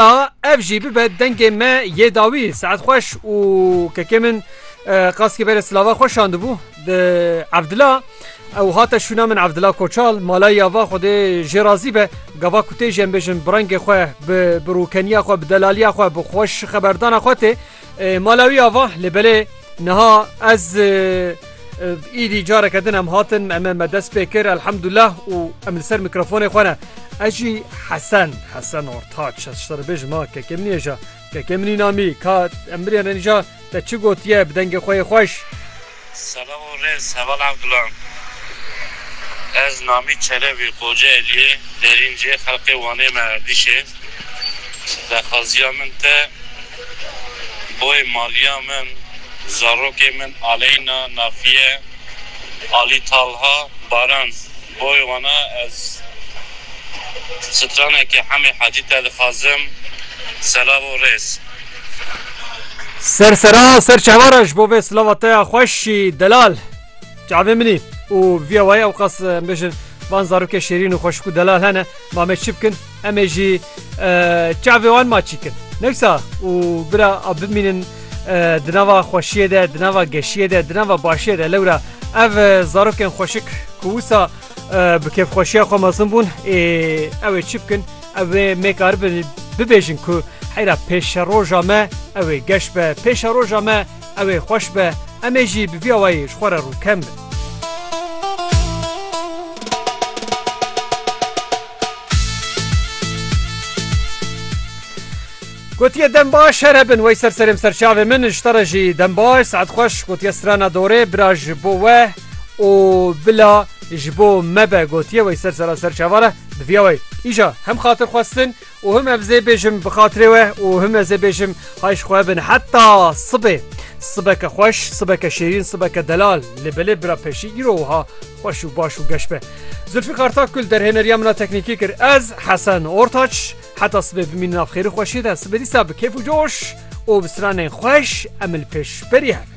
A ev jî bibe dengê me yê dawî. Seat xweş û kekê min qaskî berê silava xwe şandibû di Evdila. Ew hate şûna min Evdila Koçal malay ya va xwedê jê razî be. Gava ku tê jê em bêjin bi rengê xwe bi birûkeniya xwe bi delaliya xwe bi xweş xeberdana xwe tê. Mala wî ava lê belê niha ez îdî careke din em hatin em me dest pê kir elhemdullah û em li ser mikrofonê xwe ne ez jî hesen hesen ortaç şerbêj ma kekê min êja kekê minî namî ka em birênîja te çi gotiye bi dengê xwe yê xweş Selam û rêz Heval Evgulan Ez Namî Çelebî Kocaeliyê Derîncê xelqê Wanê me Erdîşê daxwaziya min te boyê maliya min zarokê min Aleyna Nafiye Ali Talha Baran boyê wana ez stranekê Hemê Hacî te dixwazim Selam û rêz. Ser sera ser çehwara ji bo vê silava te ya xweşî delal çavê minî û viya wayê ew qas bêjin van zarokê şêrîn û xweşik û delal hene ma me çi bikin emê jî çavê wan ma çî kin newsa û bira a bimînin di nava xweşiyê de di nava geşiyê de di nava başiyê de lewra ev zarokên xweşik ku wisa Bi kêfxweşiya xwe mezin bûn ê ew ê çi bikin ew ê mêkaribin bibêjin ku heyra pêşeroja me ew ê geş be pêşeroja me ew ê xweş be em ê jî bi vî awayî ji xwe re rûkem bin. Gotiye dem baş her hebin wey ser serê min ser çavê min ji te re jî dem baş saet xweş gotiye strana dorê bira ji bo we. û bila ji bo me be gotiye wê ser sera ser çavan e diviya wê îja hem xatir xwestin û him ev zê bêjim bi xatirê we û him ezê bêjim hay ji xwe bin heta sibê sibeke xweş sibeke şêrîn sibeke delal lê belê bira peşî îro wiha xweş û baş û geş be Zülfî Kartak kul derhêneriya min a teknîkî kir ez Hesen Ortaç heta sibê bimînin av xêrî xweşî de sibê dîsa bi kêf û coş û bi stranên xweş em li pêşberî hev